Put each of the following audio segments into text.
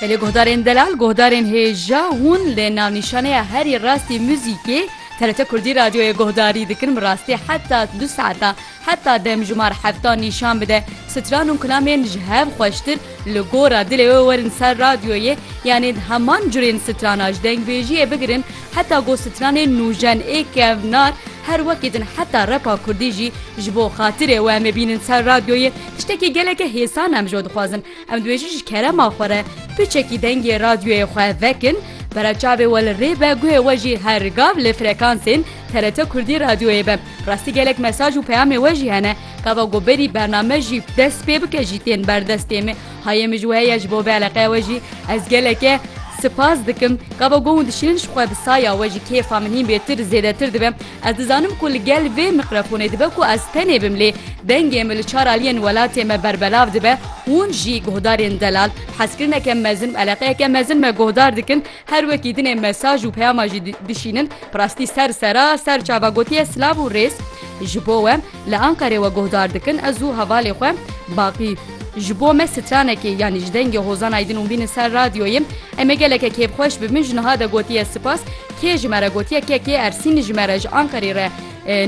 Belê guhdarên delal, guhdarên hêja hûn li navnîşaneya herî rastî muzîkê TRT Kurdî Radyoyê guhdarî dikin bi rastî heta du saetan heta demjimar heftan nîşan bide stran û kulamên ji hev xweştir li gora dilê we werin ser radyoyê yanê di heman curên strana ji dengbêjiyê bigirin Heta ku stranên nûjen ê kevnar her wekî din heta repa kurdî jî ji bo xatirê we em ê bînin ser radyoyê tiştekî geleke hêsan em ji we dixwazin em dibêjin ji kerema xwe re piçekî dengê radyoyê xwe vekin bera çavê we li rê be guhê we jî her gav li frekansên TRT kurdî radyoyê be rastî gelek mesaj û peyamê we jî hene gava ku berî bername jî dest pê bike jî tên berdestê me Hayê min ji we heye ji bo vê eleqeya we jî ez geleke Spas dikim ka bo gong dişînin ji xwe bi saya we jî kêfa min hîn bêtir zêdetir dibe ez dizanim ku li gel vê miqrefonê dibe ku ez tenê bim lê dengê min li çar aliyên welatê me berbelav dibe hûn jî guhdarên delal hezkirineke mezin eleqeyeke mezin me guhdar dikin Her wekî dinê mesaj û peyama jî dişînin, bi rastî ser sera ser çava gotiye silav û rêz ji bo we li Ankarê we guhdar dikin ez û hevalê xwe Baqî. Ji bo me stranekê yanî ji dengê Hozan Aydin û bînin ser radyoyê em ê geleke kêfxweş bibin ji niha de gotiye sipas kê ji me re gotiye ke kê Ersîn ji me re ji Ankarê re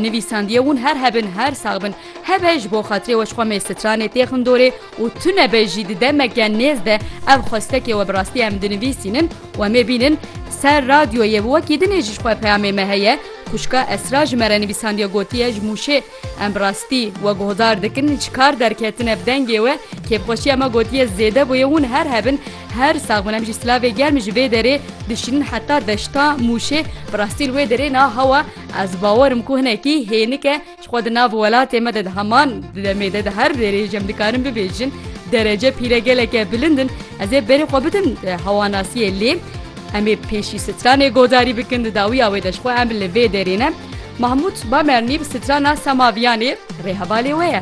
nivîsandiye hûn her hebin her sax bin hebe ji bo xatirê we ji xwe mê stranê tê xindorê Û tu nebe jî di demeke nêz de ev xwestekê we bi rastî em dinivîsînin û em ê bînin ser radyoyê bi wekî dinê ji xwe peyamê me heye Xwişka Esra ji me re nivîsandiye gotiye ji Mûşê em bi rastî we guhdar dikin ji kar derketine bi dengê we kêfxweşiya me gotiye zêde bûye hûn her hebin her sax bin em jî silavê germ ji vê derê dişînin heta deşta Mûşê bi rastî li wê derê na hewa ez bawer im ku hinekî hênik e Ji xwe di nav welatê me de di heman di demê de di her rêrê ji em dikarin bibêjin derece pîre geleke bilind in ez ê berê xwe bidim hewanasiyê lê em ê pêşî stranê godarî bikin di dawiya wê de ji xwe em li vê derê ne Mahmûd Bamernî bi strana Semaviyanê rê hevalê we ye.